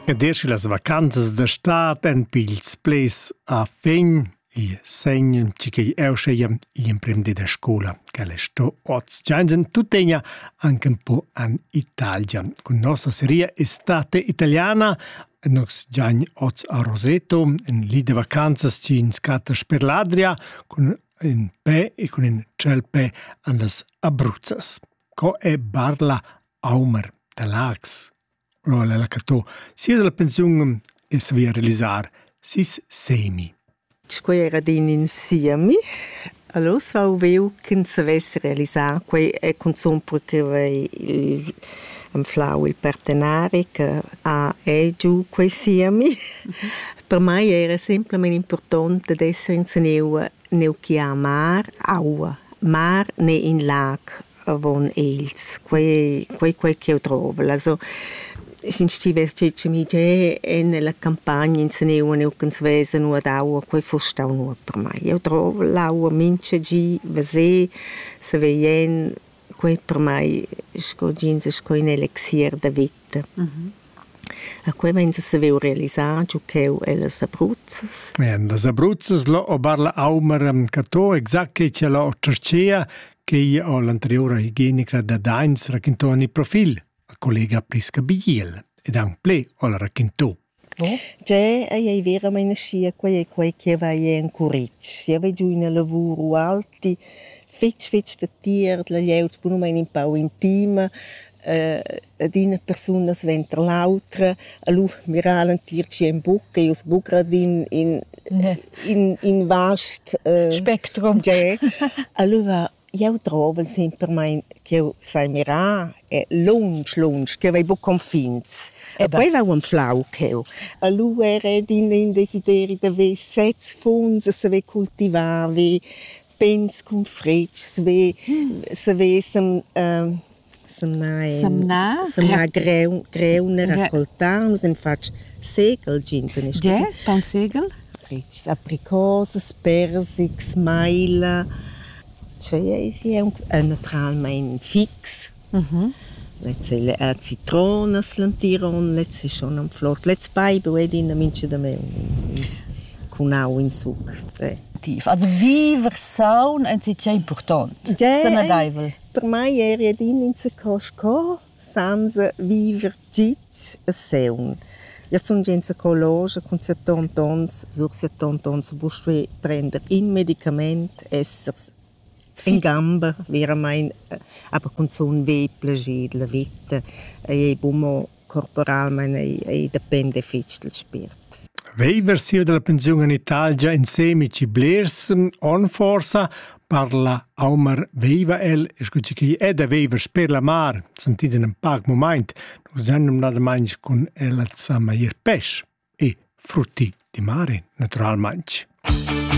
Ed er sche las vacanzas da stad èn pils ples a fin, il segn tgi ch'ei eu scheia igl emprender da scola ch'el è sto oz. Giansen tuttegna anche un po an Italia. Con nostra seria estate italiana Nox Gian oz a Roseto, in lì de vacanzas ci in scatas per l'Adria, con in pe e con in ciel pe an las Abruzzas. Co è barla Aomer da Laax ho el allacatto sia dalla pensiun e savia realisar sis semi. Quei era din in siemi. Allora ho viu ch'ins savess realisar quei e cunzun per che vei il anflau il partenari che ha e giu quei siemi. Per mei era semplamein impurtont dad esser in gneu, gneu che ha mar, aua. Mar ne in lac. avon els. Quei, quei, quei ch'jeu drovel. Also, sch'ins stivess getg mi ge nella campagna inseneua neucans vesen u ad aua, quei fuss stau nuot per mei. Jeu drovel l'aua mincha gi, veser, saveien. Quei per mei sco jeans sco in elixier da vita. A quei vegn a saver realisar giu cheu ellas abruzzas. Las abruzzas, là o barla aumera, ca to exact che cha là o tscherchea, Quei ha l'anteriura higienicra da Dains raquintau en il profil, a collega Prisca Bigiel, ed aunc ple ha la raquintau. Tgè ei ei veramein aschia, quei ei quei che va ei en curitg. Jeu vegg giu ina lavur ualti fetg fetg da tier, la glieud bunamein in pau intima. Dad ina persuna sventer l'autra, allura mira l'entir tschien buca, io sbugra d'in in in in vast spectrum. Allura jau drovel sempermein ch'jeu sai mirar e lunsch, lunsch, ch'jeu vai buca confins. E poi vau anflau cheu. Allura era ed in in desideri da ver sez funs e saver cultivar, ver pigns cun fritgs vi savessem ehm semnar semnar semnar greun greun e raccoltar nus hem fatg segl jeans en il stadi. Ge, taunt segl? Fritgs apricosas, persics, maila. Tschei eis jeu? Naturalmein fix. Lezza ei la citrona slentiron, lezza ei schon am flor, lez paiber ei adina mincha damaun cun au in suc. Also viver saun enzatgei impurtont, sanadeivel. Per mei eri adina insaco sco senza viver gitg e saun. Jeu sun gia insaco logia cun settont onns, sur settont onns bust prender in medicament, essers In gamber veramaing, aber cunzun vegl plascher della vita ei bun mo corporalmaing, ei ei dependa fich dal spiert. Veiver sia dalla pensiun in Italia insemi chi blers on forsa parla Aumar veiva el e scu chi chi è da veiver sper la mar, sentid in ün pac mumaint, nus han numnadamaing cun ella zama ir pesch e frutti di mare, natüralmaing.